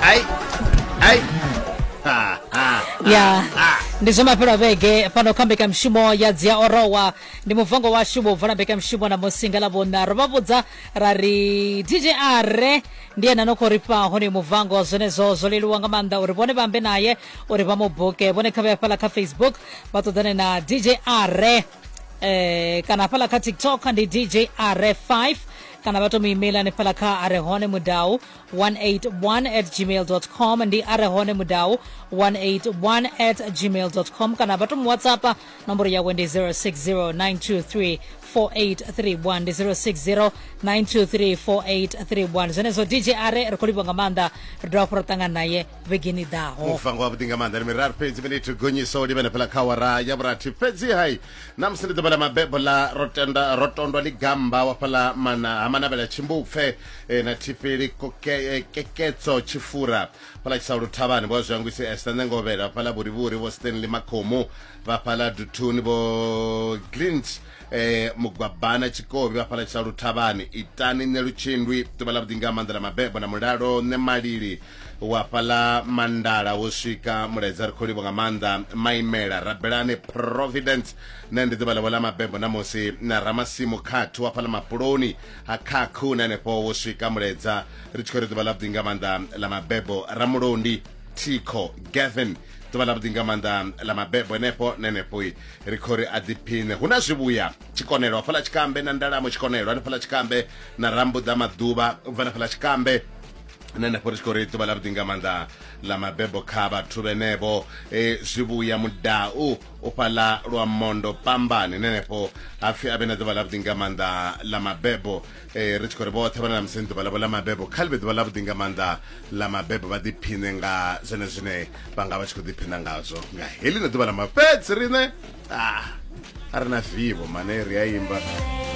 ai ai ha ha ya ndi zomaphero avege pano khambika mshumo ya dzia orowa ndi muvango washu bobva lambika mshumo na musinga la vona rovavudza ra ri dj are ndi ena nokho ri paho ni muvango zwenezwo zwo leluwa nga maanḓa uri vhone vhambe naye uri vha mu buke vhone kha vhe hafhaḽa kha facebook vha ṱoḓane na dj are eh, kana hafhaḽa kha tiktok ndi dj are 5 kana vha to mu email hanefhala kha a re hone mudau 181 at gmail com ndi a re hone mudau 181 at gmail com kana vha to mu whatsappa nomboro yawe ndi 060923 4831 ndi 0609234831 zwenezwo dj are ri khou livha nga maanḓa ri dovha fho ro ṱangana naye vhegeni i ḓaho muvango wavhuḓi nga maanḓa ndi miraru fhedzi miniti gonyiso livhenefhela kha wara ya vhurathi fhedzi hai na musi ndi ḓuvha ḽa mabebo ḽa ro tenda ro tondwa ḽi gamba wa fhaḽa mana ha manavhela tshimbupfe eh, na thifheli eh, keketso tshifura fhaḽa tshisaulu thavhani vho zwangwisi esta ṋengovhela fhaḽa vhurivhuri vho stanley makhomu vha fhaḽa duthuni vho glint eh mugwabana tshikobi vha fhala tsha luthavhani itani nṋe lutshindwi ḓuvha ḽa vhuḓinga maanḓa ḽa mabebo na mulalo nṋe malili u hafhaḽa mandala wo swika mulaedza ri khou livho nga maanḓa maimela rabelani providence na ndi ḓuvha ḽavho ḽa mabebo na musi na ramasimu khathi wa fhaḽa mapuloni ha khakhu na henefho wo swika mulaedza ri tshi khou ri ḓuvha ḽa vhuḓi nga maanḓa ḽa mabebo ramulondi thikho gavin ḓuvha ḽa vhuḓi nga maanḓa ḽa mabebo henefho na henefho ri khou ri a ḓiphine hu na zwivhuya tshikonelo hafhaḽa tshikambe na ndalamo tshikonelo hanefhaḽa tshikambe na rambuḓa maḓuvha ubva na fhaḽa tshikambe nṋe nda fhorisiko ri ḓuvha ḽa vhuḓi nga maanḓa ḽa mabebo kha vhathu vhenevho e zwivhuya mudau u fhaḽa lwa mondo pambani nenefho hapfi a vhe na ḓuvha ḽa vhuḓi nga maanḓa ḽa mabebo e, ri tshi khou ri vhoṱhe vhana na museni ḓuvha ḽavho ḽa mabebo kha ḽi vhe ḓuvha ḽa vhuḓi nga maanḓa ḽa mabebo vha ḓiphine nga zwene zwine vha nga vha tshi khou ḓiphina ngazwo nga heḽi na ḓuvha ḽa mafhedzi riṋe a ah, a ri na vivo mane ri a imba